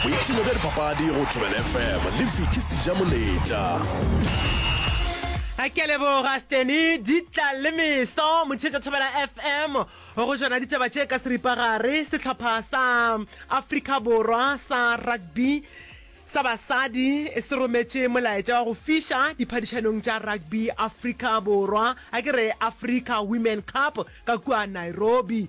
boipshino bja dipapadi go tšobele fm le viki seja moletša a ke a leboga steny ditla le meso motšhetša thobela fm go jona ditaba tše ka seripagare sehlopha sa afrika borwa sa rugby sa basadi se rometše molaetša wa go fiša diphadišanong tša rugby afrika borwa a ke re africa women cup ka kua nairobi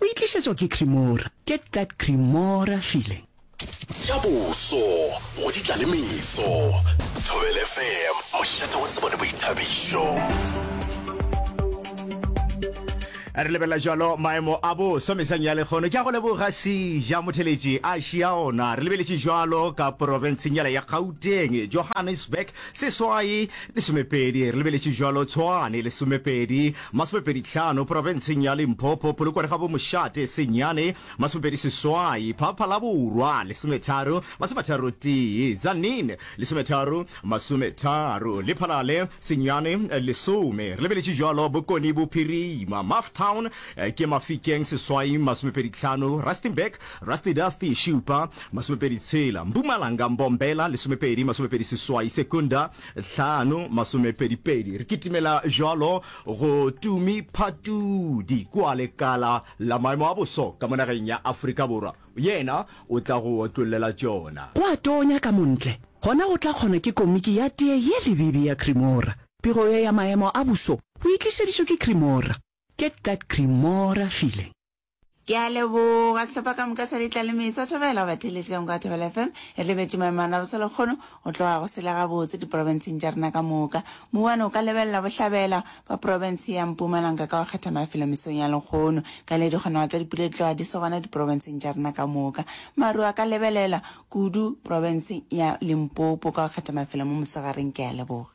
O e tlišetšwa ke Cremora. Get that Cremora feeling. Tša boso go di tla le meso. Thobela FM, mošate wa tsebo le boithabišo. re lebelela jalo maemo a boso mesang ya lekgono ke a go leboga sija motheletši a šia ona re lebeletše jalo ka porofenseng yala ya gauteng johannesburg seswai lesomepedi re lebeletše jalo tshwane lesomepedi Masomepedi tlhano, Profenseng ya Limpopo, Polokwane ga bo Mošate, Senyane, masomepedi seswai, Phapha la Borwa, lesometharo, masomatharo tee, Tzaneen, lesometharo, masometharo, Lephalale, Senyane, lesome, re lebeletše bjalo, Bokone Bophirima, Mafftown, ke Mafikeng, seswai, masomepedi tlhano, Rustenburg, Rusty Dusty, šupa, masomepedi tshela, Mpumalanga, Mbombela, lesomepedi, masomepedi seswai, Secunda, hlano masomepedipedi. Re kitimela jwalo go Tumi Phatudi kua lekala la maemo a boso ka monageng ya Afrika Borwa. Yena o tla go otlollela tšona. Go a tonya ka montle, gona go tla kgona ke komiki ya tee ye lebibi ya Cremora. Pego ye ya maemo a boso o e tlišeditšwe ke Cremora. Get that Cremora feeling. Ke a leboga sehlopha ka moka sa ditlaleme sa thobela go batheletše ka moka thobela FM e lebetše maemano a boselokgono go tloga go sele gabotse diprofenseng tša rena ka moka. Mouwane o ka lebelela bohlabela bwa profense ya Mpumalanga ka go kgetha mafelo mesong ya lekgono ka le dikgonago tša dipula di tloga di se gona diprofenseng tša rena ka moka. Maru a ka lebelela kudu profenseng ya Limpopo ka go kgetha mafelo mo mosegareng. Ke a leboga.